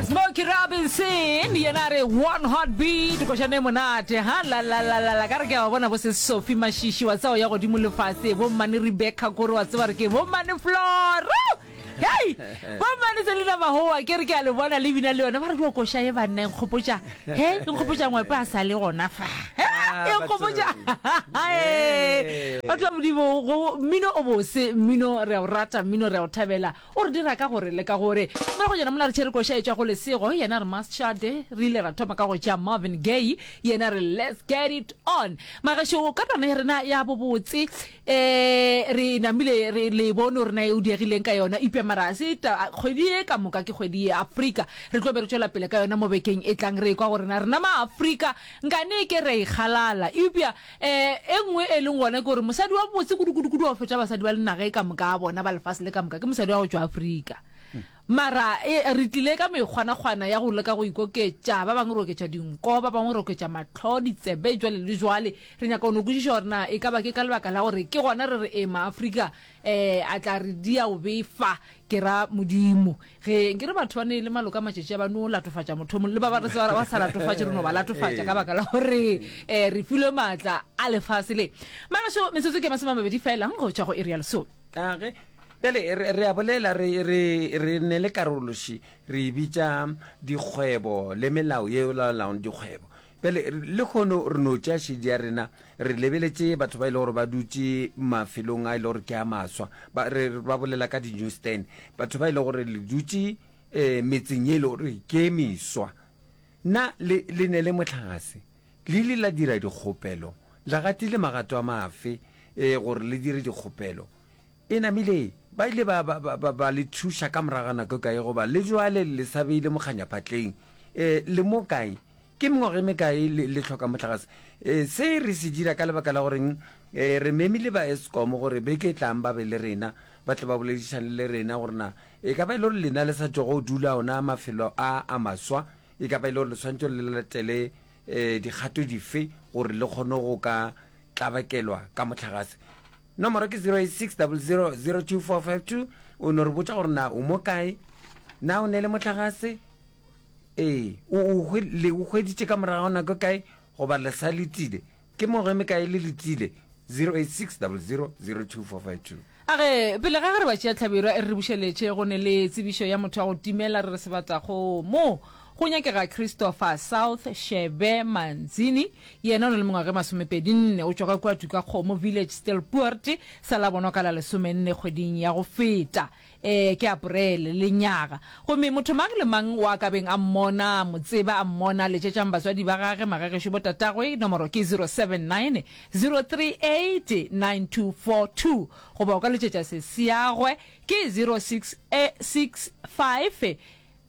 Smokey Robinson yena re one hot beat košane monate ha la la la la la ka re ke a bona bo se Sophie Mashishi wa tsao ya godimo le fase bo mmane Rebecca kore wa tseba re ke bo mmane Flora Hey, bo mmane se le na mahoa ke re ke a le bona le bina le yona ba re dio koša e banna e nkgopotša he e nkgopotša ngwepe a sa le gona fa e nkgopotša ba tla modimo go mmino o bose mmino re a o rata mmino re a o thabela O re dira ka go re leka gore. Moragonyana mola re tšere koša e tšwa go lesego, yena a re must shut, re ile ra thoma ka go tšea Marvin Gaye, yena a re let's get it on. Magešo ka tana ya rena ya bobotse e re namile re le bono rena e o diegileng ka yona eupša mara ga se ta kgwedi ye ka moka ke kgwedi ye Afrika re tlo be re tšwela pele ka yona mo bekeng e tlang re ekwa gore na rena ma Afrika nkane ke re ikgalala eupša Ee, e nngwe e leng gona ke gore mosadi wa botse kudu-kudu-kudu wa go fetša basadi ba lenaga e ka moka a bona ba lefase le ka moka ke mosadi wa go tšwa Afrika. Mara e, re tlile ka mekgwanakgwana ya go leka go ikoketša, ba bangwe re oketša dinko, ba bangwe re oketša mahlo, ditsebe, jwale le jwale. Re nyaka go no kwešiša gore na e ka ba ke ka lebaka la gore ke gona re re ee Maafrika um a tla re dia o befa, ke ra Modimo. Ge nke re batho ba ne e le maloka matšatši a ba no latofatša motho mong le ba ba re tsebara ba sa latofatše re no ba latofatša ka baka la gore um re filwe maatla a lefase le magašo metsotso ke masome a mabedi felang go tšwa go iri ya lesome age bjale re re a bolela re re re ne le karološi re e bitša dikgwebo le melao ye e laolaong dikgwebo Bjale, lehono re no tšea šedi ya rena, re lebeletše batho ba e le gore ba dutše mafelong a e le gore ke a maswa, ba, re, re ba bolela ka di-newsstand, batho ba e le gore le dutše um metseng ye e le gore ke e meswa. Na le, le ne le mohlagase? Le ile la dira dikgopelo? Le gatile magato a mafe um gore le dire dikgopelo? E namile, ba ile ba, ba, ba, ba, ba le thuša ka morago ga nako e kae, goba le bjale le le sa beile mokganyaphatleng? E, le mo kae? Ke mengwaga e mekae le, le hloka mohlagase? E, se re se dira ka lebaka la goreng e, re memile ba Eskom gore beke e tlang ba be le rena, ba tle ba boledišane le rena gore na e ka ba e le gore lena le sa tšwa go dula ona mafelo a a maswa, e ka ba e le gore le swanetše gore le latele e, dikgato dife gore le kgone go ka tlabakelwa ka mohlagase. Nomoro ke 0860002452. O no re botša gore na o mo kae, na o ne le mohlagase, ee, o o hwe, le o hweditše ka morago nako e kae, goba le sa letile. Ke mogo e mekae le letile? 0860002452. A ge, pele ga ge re ba tšea hlabirwa, e re re bušeletše, go ne le tsebišo ya motho wa go timela, re re sebata go mo. Go nyakega Christopher South Shebe Manzini, yena o na le mengwaga e masomepedi nne, o tšwa ka kua Tukakgomo Village Stilpoort, sa la bonwa ka la lesomenne kgweding ya go feta, ee, ke Aporele, lenyaga. Gomme motho mang le mang wa ka beng a mmona, a mo tseba, a mmona, letšetšang batswadi ba gage, magagešo, botatagwe, nomoro ke 079-038-9242, goba o ka letšetša seseagwe, ke 0665.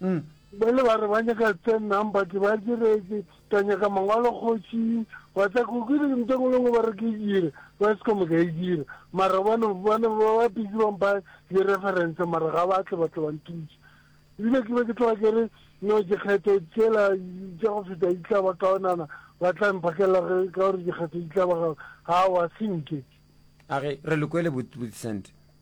Hm. Bale ba re ba nyaka ten number ke ba diretse ka nyaka mangwalo kgoši wa tla ko ke ntho engwe le ngwe ba re ke e dire ba se kome ka e dira mara bane bane ba ba busy ba mpa di reference mara ga ba tle ba tle ba ntuse ebile ke be ke tloga ke re no dikgetho tsela tša go feta di tla ba kaonana ba tla mphakelela ge ka gore dikgetho di tla ba ga wa senke a ge re le kwele botsent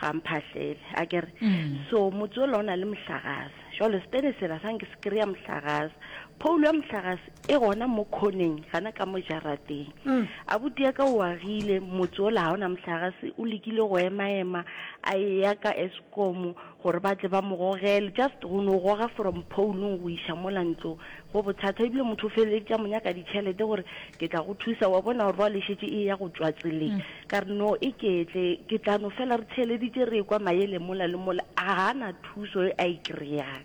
ga mphahlele a ke re so motse ola o na le mohlagase jalo setene sela sa nke se kry-a mohlagase phoulo ya mohlagase e gona mo khoneng gana ka mo jarateng a butia ka o agile motse ola ga o na mohlagase o lekile go ema-ema a eya ka escomo gore ba tle ba mo gogele just go no goga from phounung go iša mola ntlo go bothata ebile motho o feleletša mo nyaka ditšhelete gore ke tla go thusa wa bona gore ba le šetše e ya go tšwa tseleng mm. ka re no e ketle ke tla no fela re theeleditše re kwa mayele mola le mola a gana thuso e a e kry-ang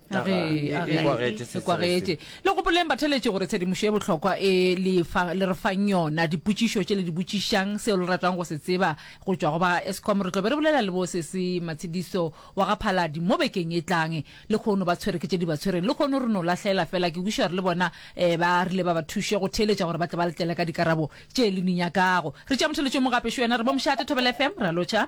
a re e- a e re- kwagetse se e kwagetse le gopoleng batheletši gore tshedimošo e bohlokwa e le fa- le re fang yona dipotšišo tše le di botšišang seo le ratang go se tseba go tšwa go ba escom re tlo be re bolela le bo sese matshediso wa ga phaladi mo bekeng e tlang le kgono ba tshwere ke tše di ba tshwereng le kgono re no lahlela fela ke kweša gore le bona um ba rile ba ba thuše go theeletša gore ba tle ba letlele ka dikarabo tše le di nyakago re tšea motheletšo mo gape šo yena re bo mošate thobela fm ra lotšha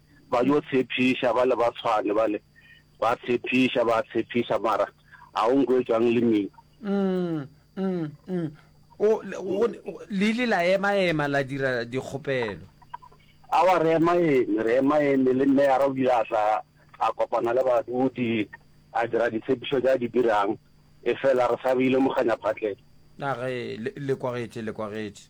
ba yo tshepiša bale ba tshwane bale ba tshepiša ba tshepiša mara a o nko etswang le mina mm, mm, mm. o le ile la ema ema la dira dikgopelo a wa re ema eme re ema eme le mme ya ra o ile a tla a kopana le badudi a dira ditshepišo tsa di dirang e fela re sa bile moganya phatleng a re le kwagetše le kwagetše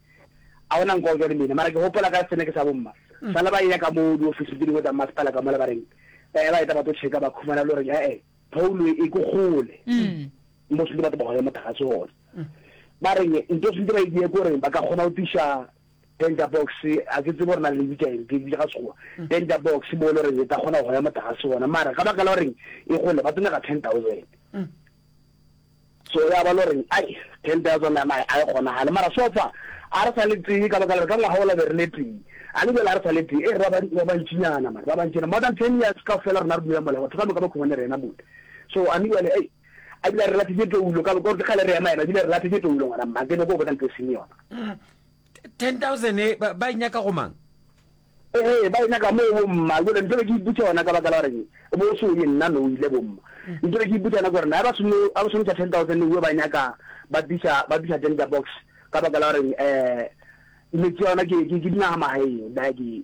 A go na nkwa o ja le mina, mara ke gopola ka seneke sa bomma. Sale ba eya ka moo diofising tše dingwe tsa mmasepala ka mola ba reng, Ee, ba eta ba tlo tšheka ba khumana le goreng ee, phoulo e e ko kgole mo swantse ba tobogele mothakgatse gona. Ba reng nto swantse ba e diye ke goreng ba ka kgona go tliša tender box, ga ke tsebe gore na le bitša eng, ke bitša ka Sekgowa, tender box mo e le goreng e ka kgona go goya mothakgatse gona, mara ka baka la goreng e kgole ba tlo nyaka ten thousand. Sore a ba lo reng, Ai, ten thousand ya mae a e kgonagale, mara so far a re sa le tee, ka baka la gore ka ngwaga ola be re le tee, a le bjale a re sa le tee, e re ba ba bantšinyana mara, ba bantšinyana, more than ten years kaofela rena re dula mola, batho ka moka ba khungwane rena mole, so a me bjale ei, a bile a re lathitše toulo, ka gore ke kgale re ema ema, a bile a re lathitše toulo ngwana mma, ke nyako go botsa ntho e seng yona. 10000 e ba, ba e nyaka go mang ee ba e nyaka moo bomma jale ntho be ke iputsa yona ka baka la gore bo so ye nna no ile bomma ntho be ke iputsa yona gore na ba sono a ba sono tsa 10000 uwe ba nyaka ba bisa ba bisa tender box ka baka la gore eh metsi yona ke ke ke dinaga magaeng ba ke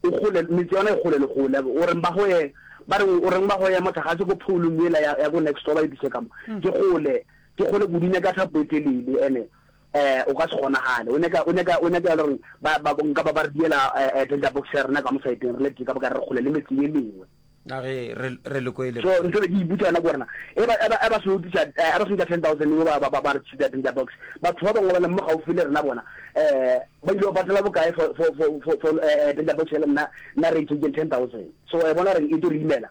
o gole metsi yona e gole le gole o reng ba go ye ba re o reng ba go ye motho ga se go pholo mme la ya go next door ba e bise ka mo ke gole ke gole go dine ka thapo e telele ene Eh, o ka se kgonagale. O nyaka, o nyaka, o nyaka ya le gore ba, ba, nka ba ba re diela eh, eh, tender box ya rena ka mosaeteng, re le tee ka boka re kgole le metse ye mengwe. A ge re, re le ko e le. So, ntho e be ke iputsa yona ke gore na, e ba, e ba, e ba se utisa, eh, e ba se utisa 10,000 yo ba, ba, ba, ba re tshita tender box. Batho ba bangwe ba leng mo gaufi le rena bona, eh, ba ile ba patela bokae for, for, for, for, for eh, eh, tender box ya le nna, nna re e tšentšeng 10,000. So, wa e bona gore e tlo re imela.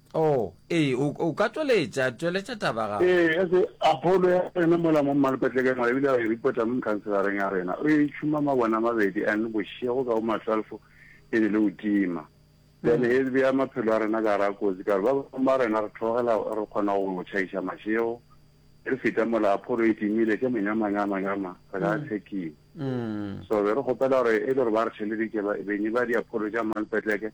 Oo, ee, o, o ka tšweletša, tšweletša taba ya gago. Ee, ya se, Apolo ya rena mola mo Mmalopetlegeng mola, e bile a e ripota mo mokhanselareng ya rena. O e tšhuma mabone a mabedi, and bošego ka bomatlwalfo e be le go tima. Then e bea maphelo a rena ka gare ga kotsi, ka gore ba bangwe ba rena re theogela, re kgona go tšhaiša mašego, re feta mola Apolo e timile, ke monyamanya a manyama, re ka tshekiwa. So be re kgopela gore e le gore ba re theleditše, ba, beny ba diapholo tša Mmalopetlegeng,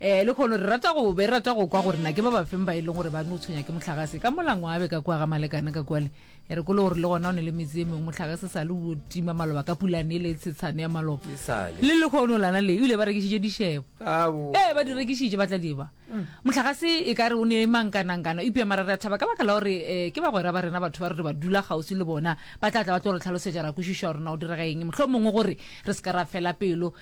Ee, lekhono re rata go be rata go kwa gore na ke ba bafeng ba e leng gore ba no tshwenya ke motlhagase ka molangwabe ka kwa ga malekane ka kwale e re kolo gore le gona o ne le metse e mengwe motlhagase sa le o tima maloba ka pulane e le tshetshane ya maloba le lekhono lana le ebile ba rekisitse dishebo ee ba di rekisitse ba tla diba mm. motlhagase e ka re o ne mankanangkana ipea mara re thaba ka baka la gore um ke bagwera ba rena batho ba re re ba dula kgauswi le bona ba tla tla ba tlo re tlhalosetsa ra kwešišo ya rona o direga eng motlho mongwe gore re se ka ra fela pelo